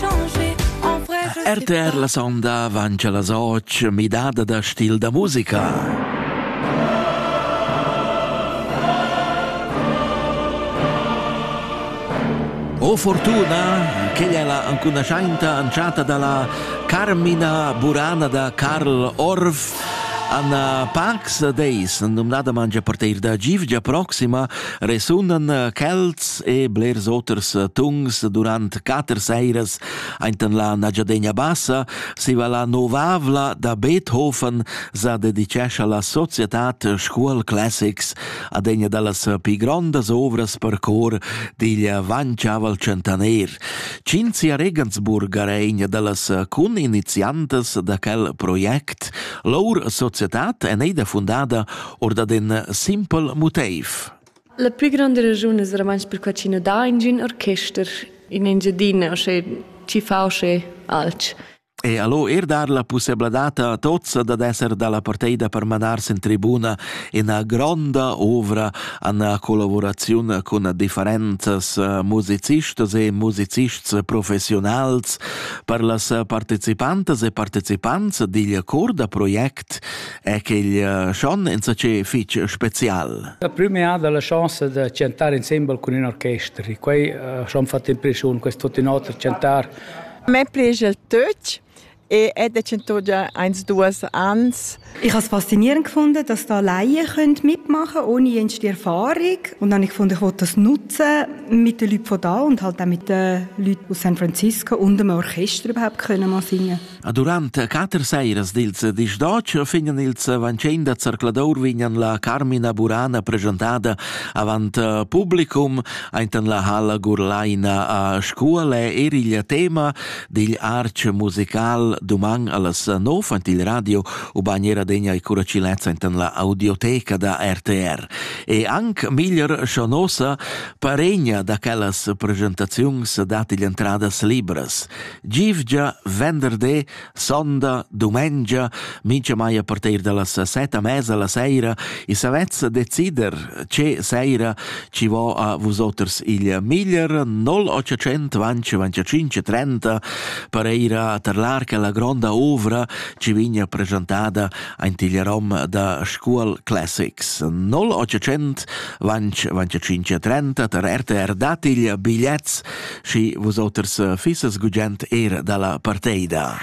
RTR la sonda vancia las och midada da stil da musica. O fortuna che è la ancunasainta anciata dalla Carmina Burana da Karl Orff Anna Pax Deis, numnada mangia parteir da Givgia proxima, resunan eh, quels e blers oters eh, tungs durant quatter seiras ainten la Nagiadegna Bassa, siva la novavla da Beethoven sa dedicescia la Societat School Classics ad egna dallas pi grondas ovras per cor digl Vanciaval Centaner. Cinzia Regensburger è egna dallas cun iniziantas da quel project. Lour societat è neida fundada or dad in simpel motiv. La pli gronda raschun es romansch perquai chi nu dà ingün orchester in Engiadina, osce chi fa osce alch. E allo er dar la pussebladad a tots dad esser dalla parteida per manars in tribuna una gronda ovra an collaboraziun cun differentes eh, musicistas e musicists professionals per las partecipantas e partecipants digl cor da project è quel eh, schon insatge fitg spezial. La prima ha la chance di chantare insieme con un orchestra. Quei eh, schon fatto impressione, questo tutti noter chantar. A me piace il Deutsch. Ich habe da eins, duas ans. Ich habe es faszinierend gefunden, dass da Laien mitmachen können, ohne jenste Erfahrung. Und dann habe ich gefunden, ich will das nutzen mit den Leuten von da und halt auch mit den Leuten aus San Francisco und dem Orchester überhaupt können mal singen. Durant quatter sairas dils dis d'otg vegnan ils vancin da zercladur vegnan la Carmina Burana presentada avant publicum aintan la halla Gurlaina a Scuole er il tema digl arch musical Duman allas nov ant il radio u bagnera degna e curacilezza aintan la audioteca da RTR. E anc miglier Schonosa paregna da quellas presentaziuns dat igl entradas libras. Givgia, venderdi, sonda, dumengia, mincha mai a partir da las set a mesa la seira, i savezza decider che seira ci vo a vusoters il miglier 0800 25 30 per eira tar l'arca la gronda ovra ci vigna presentada ein tiglierom da Scuol Classics 0800 25 30 tar RTR datigl bigliets schi vus oters eh, fissas gugent era dalla parteida.